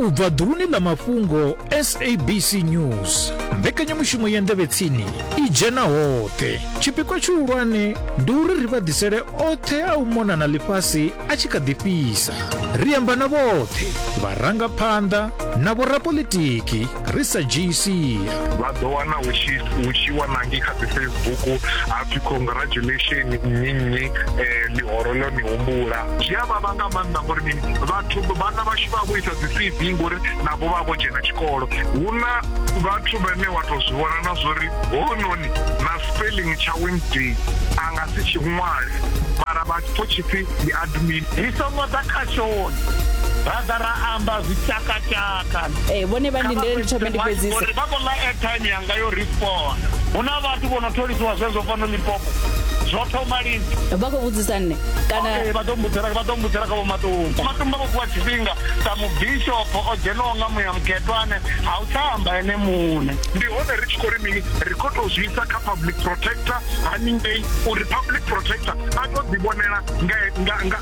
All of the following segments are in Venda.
u bva ḓuluni ḽa mafhungo sabc news mbekanyamushumo ya ndevhetsini i dzhena hoṱhe tshipikwa tshihulwane ndi uri ri vha ḓisele oṱhe a u mona na ḽifhasi a tshi kha ḓi fhisa ri amba na vhoṱhe vharangaphanḓa na vhorapolitiki ri sa dzhii sia vha ḓo wana hu tshi wanangi kha dzifacebook hapfi congratulation nnyi nnyi um ḽihoro ḽo ni humbula zwi a vhavha nga maanḓa ngori mini vhathu vhana vhashu vha vho isa dzi c v ngori navho vha vho dzhena tshikolo hu na vhathu vhane wa tou zwi vhona na zwo ri hononi na spelling tsha wednesday a nga si tshi ṅwale mara vha pfo tshipfi ndi admin ri songo ḓa kha shoni ra ḓa ra amba zwi tshakatshaka kana ee vhone vha ndindele ndi thome ndi fhedzise uri vha khou ḽa airtime yanga yo rifona hu na vhathu vho no tholisiwa zwezwo fano lipopo zwo thoma lini vha khou vhudzisa nne kana vha ḓo mbudzela vha ḓo mbudzela kha vhomatumba matumba vho fhiwa tshifhinga sa mubishopo o dzhenaho nga muya mukhetwa ane ha u tsha amba ene muṋe ndi hone ri tshi khou ri mini ri khou tou zwi isa kha public protector haningei uri public protector a tou ḓivhonela nga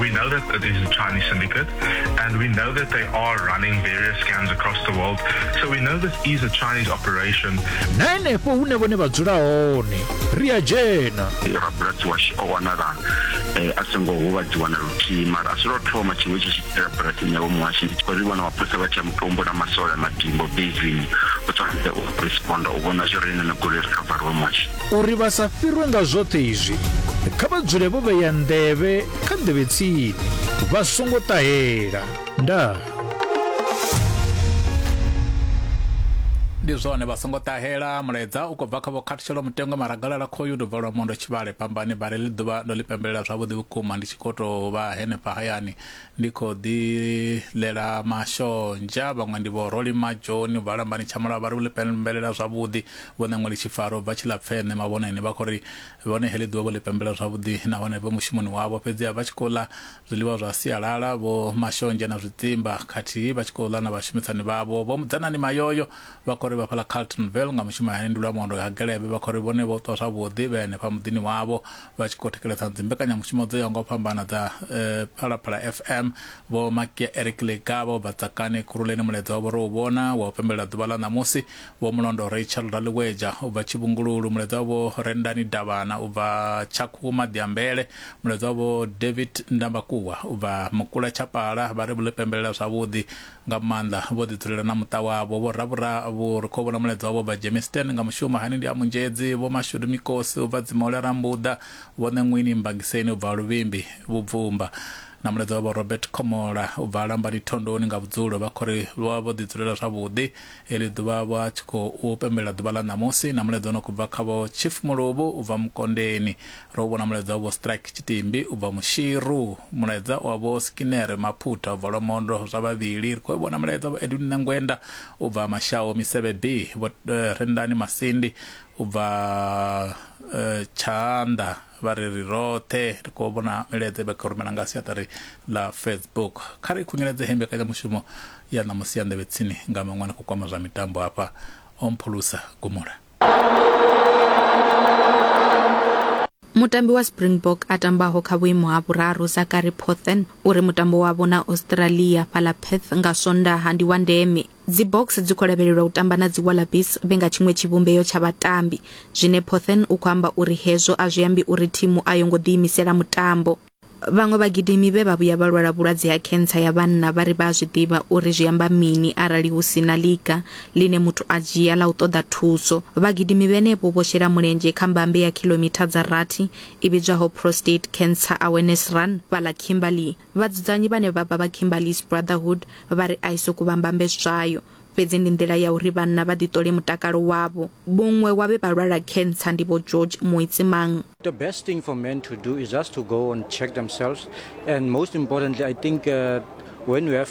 We know that it is a Chinese syndicate, and we know that they are running various scams across the world. We know this is a Chinese operation. na henefho hune vhone vha dzula hone ri a dzhena rabulasi washu o wanala eh, a songo huvhadziwa na luthihi mara a si lwo thoma tshiṅwe tshi tshi itela bulasini yavho muhasho ndi khou ri vhona mapholisa vha tsha mutombo na masole a madimbo bezini u tsanze u responda u vhona zwi re ine na goloi ri khavariwe muhasho Uri vha sa fhirwe nga zwoṱhe izwi, kha vha dzule vho vhea nḓevhe kha nḓevhe tsini, vha songo ṱahela. Ndaa. ndi zwone vha songo ṱahela mulaedza u khou bva kha vho khathutshelo mutengo maragalala khoyu ndo bvalwa mondo tshivhale pambani vhare ḽi ḓuvha ndo ḽi pembelela zwavhuḓi vhukuma ndi tshi khou tou vha henefha hayani Ndi khou ḓi ḽela mashonzha. Vhaṅwe ndi vho Rolly Majoni u bva Lambani Tshamulavha vha ri u ḽi pembelela zwavhuḓi. Vho Ṋeṅweli Tshifaro u bva Tshilapfeṋe Mavhoneni vha khou ri vhone heḽi ḓuvha vho ḽi pembelela zwavhuḓi nahone vhe mushumoni wavho fhedziha vha tshi khou ḽa zwiḽiwa zwa sialala vho mashonzha na zwidzimba khathihi vha tshi khou ḽa na vhashumisani vhavho. Vho Mudzanani Mayoyo vha khou ri vha fhaḽa Carltonville nga mushumo hani ndi Lwamondo Hagelebe vha khou ri vhone vho ṱwa zwavhuḓi vhe henefha muḓini wavho vha tshi khou thikheledza dzimbekanyamushumo dzo yaho nga u fhambana dza eh, phalaphala fm vho makia eric lega vho bva tsakani khuruleni mulaedza wavho ro u vhona wa u pembelela ḓuvha ḽa ṋamusi vho mulondo rachel raliweja u bva tshivhungululu mulaedza wavho rendani davhana u bva tshakhu maḓiambele mulaedza wavho david ndambakuwa u bva mukula tshapala vha ri vho ḽi pembelela zwavhuḓi nga maanḓa vho ḓi dzulela na muṱa wavho. Vho Ravhura vho ri khou vhona mulaedza wavho bva Germiston nga mushumo hani ndi a Munzhedzi, Vho Mashudu Mikosi u bva Dzimole a Rambuḓa, Vho Ṋeṅwini Mbangiseni u bva Luvhimbi Vhubvumba na mulaedza wa Vho Robert Khomola u bva Lambani Thondoni nga vhudzulo. Vha khou ri vho vha vho ḓi dzulela zwavhuḓi Heḽi ḓuvha vho a tshi khou pembelela ḓuvha ḽa ṋamusi na mulaedza u no khou bva kha vho Chief Muluvhu u bva Mukondeni. Ro u vhona mulaedza wa vho Strike Tshitimbi u bva Mushiru, mulaedza wa vho Skinner Maphutha u bva Lwamondo zwa vhavhili. Ri khou u vhona mulaedza wa vho Edwin Ṋengwenda u bva Mashau Misevhe B, vho Rendani Masindi u bva Tshaanda vha ri ri roṱhe ri khou vhona milaedza vha kha rumela nga siaṱari ḽa facebook kha ri khunyeledze he mbekanyamushumo ya ṋamusi ya nḓevhe tsini nga maṅwe na khou kwama zwa mitambo hafha o mphulusa gumula Mutambi wa Springbok a tambaho kha vhuimo ha vhuraru Zachary Pothen uri mutambo wavho na Australia fhaḽa Perth nga Swondaha ndi wa ndeme. Dzi Boks dzi khou lavhelelwa u tamba na dzi Wallabies vhe nga tshiṅwe tshivhumbeo tsha vhatambi, zwine Pothen u khou amba uri hezwo a zwi ambi uri thimu a yo ngo ḓiimisela mutambo. Vhaṅwe vhagidimi vhe vha vhuya vha lwala vhulwadze ha khentsa ya vhanna vha ri vha a zwi ḓivha uri zwi amba mini arali hu si na ḽiga ḽine muthu a dzhia ḽa u ṱoḓa thuso. Vhagidimi vhenevho vho shela mulenzhe kha mbambe ya khiḽomitha dza rathi i vhidzwaho Prostate Cancer Awareness Run fhaḽa Kimberley. Vhadzudzanyi vhane vha vha vha Kimberly's Brotherhood vha ri a i sokou vha mbambeswayo fhedzi ndi nḓila ya uri vhanna vha ḓiṱole mutakalo wavho. Muṅwe wa vhe vha lwala khentsa ndi Vho George Moitsimang. The best thing for men to do is just to go and check themselves and most importantly I think uh, when you have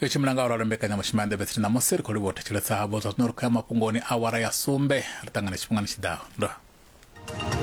yo tshimbila nga uralo mbekanyamushumo ya ndebetsini ṋamusi ri khou livhuwa u thetshelesa havho zwa zwino ri khou ya mafhungoni awara ya sumbe ri ṱangane tshifhingani tshiḓaho nda